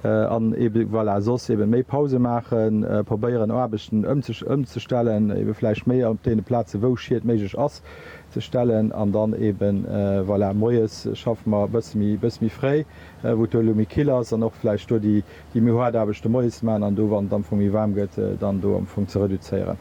An ebe voilà, soss ebe méi Pause maachen, probéieren Aarbechten ëmzestellen, ebe vläicht méi op deene Plaze wou Schied méiglech ass ze stellen. An dann ebe voilà, moies schaffe mer e bësse méi, e bësse méi fréi, wou et do elo méi kill ass, an och vläicht do déi méi haart Aarbechte moies maachen, an do wann et am Fong méi waarm gëtt, dann do am Fong ze reduzéieren.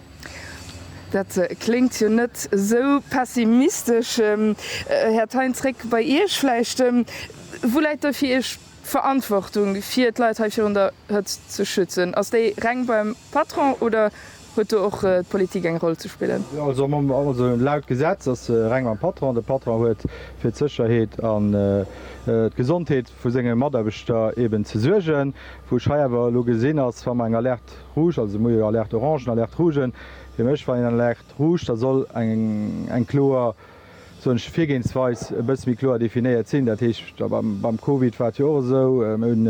Dat kléngt jo net esou pessimistesch. Här Thein, zréck bei Iech vläicht. Wou läit da fir Iech d'Verantwortung, fir d'Leit hei virun der Hëtzt ze schützen? Ass déi reng beim Patron oder huet do och d'Politik eng Roll ze spillen? Also laut Gesetz ass se reng beim Patron. De Patron huet fir d'Sécherheet an d'Gesondheet vu senge Mataarbechter eben ze suergen, wou ech hei awer elo gesinn, ass wa mer eng Alerte rouge, also mir hu jo Alerte orange an Alerte rouge, fir mech war een an Alerte rouge, da soll eng kloer, soen ech, Virgehensweis e bësse méi kloer definéiert sinn. Dat heescht, a beim Covid war et jo och esou, mir hunn,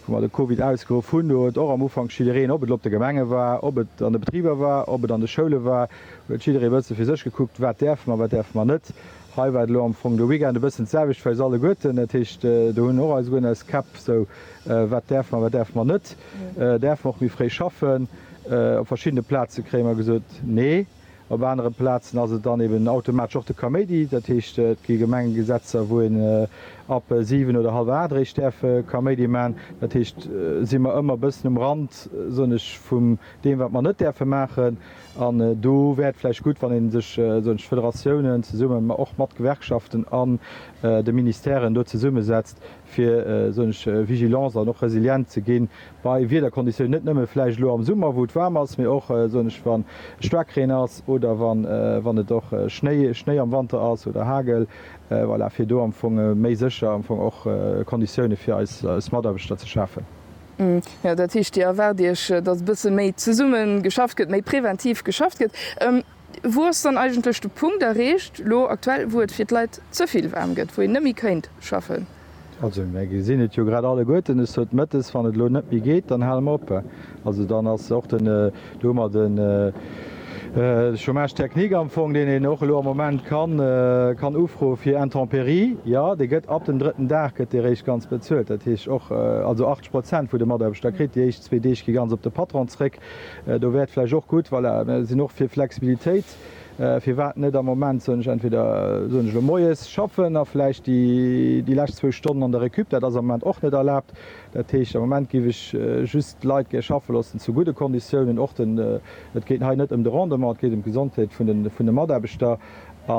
wou mer de Covid ausgeruff hunn, do huet och am Ufank jiddereen, ob et elo op de Gemenge war, ob et an de Betriber war, ob et an de Schoule war, huet jidderee e bësse fir sech gekuckt, wat däerfe mer, wat däerfe mer net, Hei war et elo am Fong de Weekend e bëssen d'selwecht fir eis alleguerten. Dat heescht, do hunn och alleguerten eis Käpp esou, Wat däerfe mer, wat däerfe mer net? Däerfe mer och méi fréi schaffen? Op verschiddene Plaze kréie mer gesot, Nee. Op anere Plazen ass et dann eben automatesch och de Kaméidi. Dat heescht, et gi Gemengegesetzer, wou een ab siwen oder hallwer aacht eréischt däerf Kaméidi maachen. Dat heescht, si mer ëmmer e bëssen um Rand, soen ech, vum deem, wat mer net däerfe maachen. An do wär et vläicht gutt, wann ee sech tëscht Federatiounen zesumme och mat Gewerkschaften an de Ministèren do zesummesetzt, fir sech vigilance an och resilient ze gi bei Wiederkonditiounen, net nëmme vläicht elo am Summer, wou et waarm ass, mee och wa Staarkreen ass oder wann et och Schnéi am Wanter ass oder Hagel, voilà, fir do am Fong méi sécher am Fong och Konditioune fir eis Mataarbechter ze schafen. Jo, dat heescht, Dir erwaart Iech, datt e bësse méi zesumme geschafft gëtt, méi preventiv geschafft gëtt. Wou ass dann eigentlech de Punkt erreecht elo aktuell, wou et fir d'Leit ze vill waarm gëtt, wou een net méi kéint schaffen? Also mir gesinn et jo grad alleguerten, es huet Mëttes, wann et elo net méi geet, dann hale mer op. Also dann ass och de Do hu mer de Chômage technique am Fong, deen een och elo am Moment kann ufroe fir Intempéries. Jo, dee gëtt ab dem drëtten Dag gëtt dee réischt ganz bezuelt. Dat heescht och, also 80 Prozent vun de Mataarbechter kritt. Déi éischt zwee Deeg gi ganz op de Patron zréck. Do wär et vläicht och gutt, voilà, mir sinn och fir Flexibilitéit, firwat net am Moment, soen ech, entweder, soen ech elo, moies schaffen a vläicht déi lescht zwou Stonnen an der Récup, dat ass am Moment och net erlaabt, Dat heescht, am Moment géif ech just d'Leit gär schaffe loossen zu gudde Konditiounen. Och den, et geet hei net ëm de Rendement, et geet ëm d'Gesondheet vun de, vun de Mataarbechter. A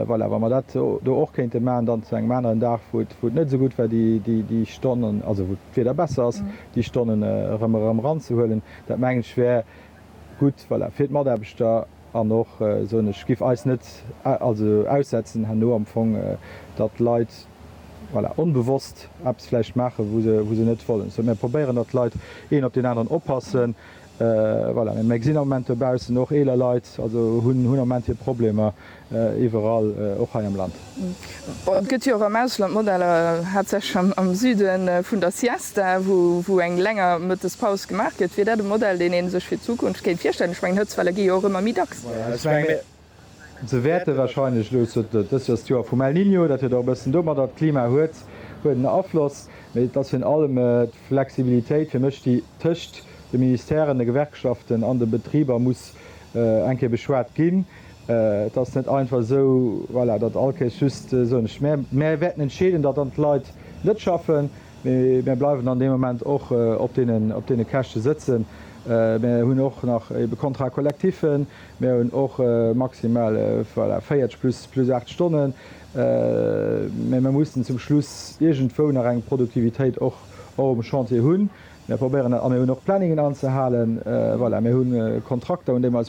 voilà, wa mer dat do och kéinte maachen, dann zu engem aneren Dag, wou et, wou et net esou gutt war, déi, déi, déi Stonnen, also wou d'Wieder besser ass, déi Stonnen erëm, erëm eranzehuelen, dat mengen ech wär gutt, voilà, fir d'Mataarbechter. An och, soen ech, giff eis net also aussetzen herno am Fong, datt d'Leit, voilà, onbewosst eppes vläicht maachen, wou se, wou se net wollen. Esou, mir probéieren datt d'Leit een op deen aneren oppassen. Voilà, mä mir gesinn am Moment dobaussen och eeler Leit, also hunn, hunn am Moment hir Problemer iwwerall, och hei am Land. Bon, et gëtt jo och am Ausland Modeller, haaptsächlech am Süde vun der Siesta, wou, wou eng länger Mëttespaus gemaach gëtt. Wier dat e Modell, deen ee sech fir d'Zukunft kéint virstellen? Ech mengen, Hëtzwelle gi jo och ëmmer méi dacks. Voilà, ech mengen, Ze wäerte warscheinlech elo zu dës Joers d'Joer vum El Niño. Dat huet och e bëssen domadder, d'Klima huet huet en Afloss, mee et ass virun allem d'Flexibilitéit fir mech, déi tëscht de Ministèren, de Gewerkschaften an de Betriber muss eng Kéier beschwat ginn. Et ass net einfach esou, voilà, datt all Kéis just soen ech, mär wäerten entscheeden, datt dann d'Leit net schaffen, mee mär bleiwen dann dee Moment och op deenen op deene Käschte sëtzen. Mär hunn och nach ebe Contrats collectifs. Mir hunn och maximal, voilà, 40 plus 8 Stonnen, mä mir mussen zum Schluss iergendwou nach eng Produktivitéit och um Chantier hunn. Mir probéieren dat a mir hunn och Planningen anzehalen. Voilà, mir hu Kontrakter un déi mer eis.